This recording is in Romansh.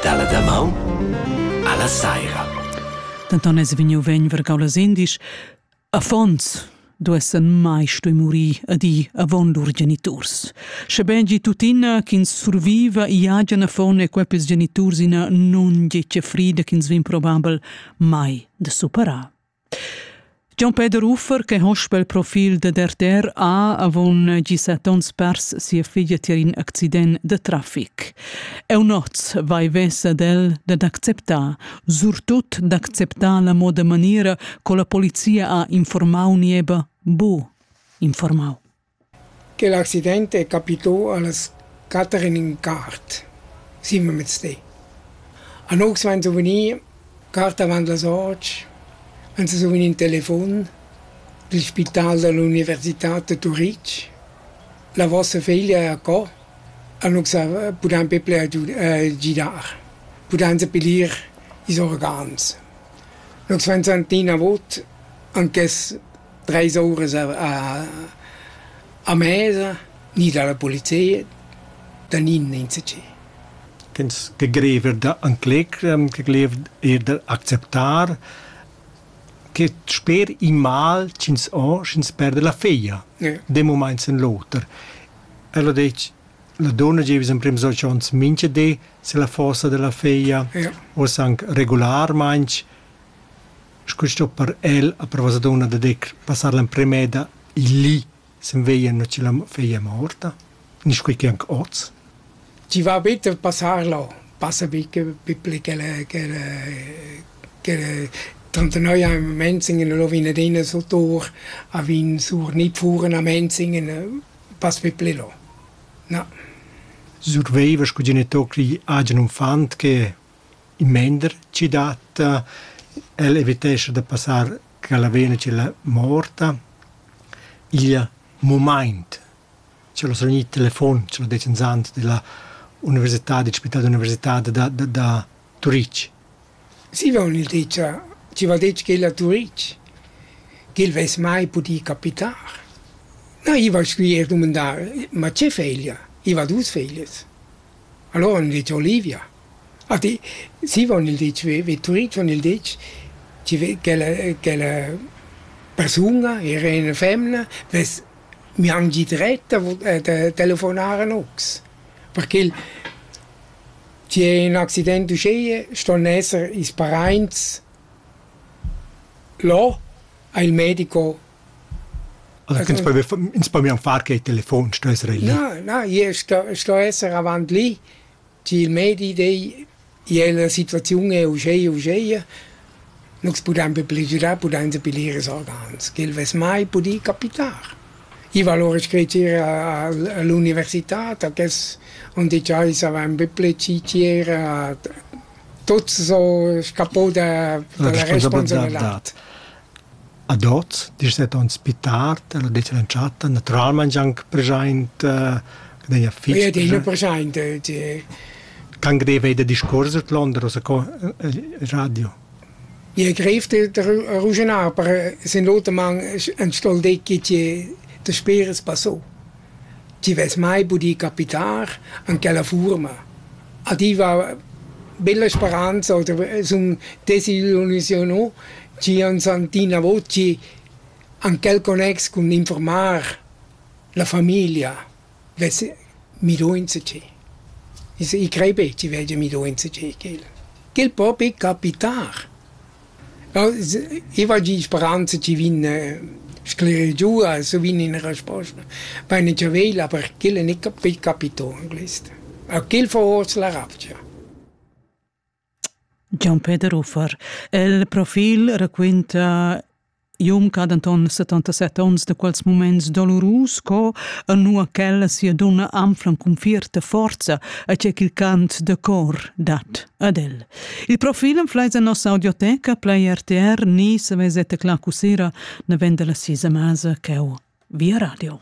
Dalla damaun alla saira. Denton es vegniu vegn vergau las indisch. Affons duessan mai stoi muri a di avon lur geniturs. Schebein gi tuttina ch'ins surviva i hagen affon e quepes geniturs ina non gece frida ch'ins vin probabel mai de superar. Gian Peter Uffer che hospa il profil dad RTR ha avon gisat onns pers sia figlia tier in accident da traffic. Eunoz vai vesa del dad acceptar, surtut d'acceptar la moda maniera co la polizia ha informau nieba bu informau. Quel accident è capità a las quatter en in quart, simmelmezdi. Anox vegn survegnì quart avant las otg, vegn survegnì in telefon dil spital dall'universitad da Turitg. La vossa feglia è acco, Anox pudain be pli gidar, pudain sa piglier ils organs. Nox vegn sentì inavot anc quest treis uras a a mesa ni dalla polizia da nin insatgi. Ins che greiv eir da ancler, che greiv eir d'acceptar che sper in mal ch'ins ho, sch'ins perda la figlia d'ün mumaint sen l'oter. El ho detg la donna gieva emprims dolç ons mincha di silla fossa della figlia, uoss anc regularmaing. Sco sto per el a per vossa dunna da dir passar l'emprema eda lì sen veglia nua che la feglia è morta, ni sco che anc oz. Chi va better passar là, passa be che piple ch'el ch'el ch'el trentanoi a Menzingen e lo vin ad ina sotur a vin sur nit furen a Menzingen, pass piple là. Na. Surveiva sco genitocli agen uffant che In mender chi datta, el evitescha da passar cha la vena tschella morta. Igl mumaint ch'el ho sagli il telefon, ch'el ho det inzant della università, del spital d'università da da da Turich. Zieva ho gnü dit cha chi val dir ch'el a Turich, ch'el vess mai pudü capitar. Na, i va scuier dumandar: «Ma che feglia? I va dus feglias». Alura han gnü dit cha Olivia. Ade, si von il detg, Vetturin von il detg, chi ve ch'ella ch'ella persun-a, era üna femna, vess miangi dret da vo- da telefonar a nox, perché il chi è in accident uschea ston esser ils paraints là a il medico. Allora ins po ins po mian far che telefon, sto esser lì. Na, na, io sto sto esser avant lì. Cha'l medi dei gliez la situaziun è uscheia uscheia, nus pudain be pligiurar, pudain sappier ir a Sargans, ch'el vess mai pudì capitar. I va alura scrit ir a l'università, da quels on dit cha ins avain be plecier a tuots so, scapo da da la responsabilità. Ad hoz, dschet aunz pü tard, el ha detg all'entschatta, natüralmaing gianc preschaint, ch'el d'hegia fich Ed hegia preschaint, tge Ch'anc deva eir da discuors d'londer o sco il radio. Ie greiv da ruschenar, per sün l'oter man ün stol decki chi daspera as passò. Chi vess mai pudì capitar an quella fuorma. adüva bella speranza oder sun desillusiunà chi ans han inavo chi han quel connex cun informar la famiglia vess miduonza chi. I crei be chi vegia miduonza chi ch'el. Ch'el po be capitar. I va gì speranza chi vegn sclerir giù e se vegn üna resposta. Vaine già vegl, aber ch'el è gnanca pü capitò in quist. A quel fa hoz la ravgia. Gian-Peter Uffer. Il profil raquinta Iom ca denton 77 onns de quels moments dolorus co e nua quella sia dunna anflan cun fierta forza a ce ch'il cant de cor dat ad el. Il profil en fleis en nossa audioteca plei RTR ni se vezete cla cusera ne vende la sisa masa ch'eu via radio.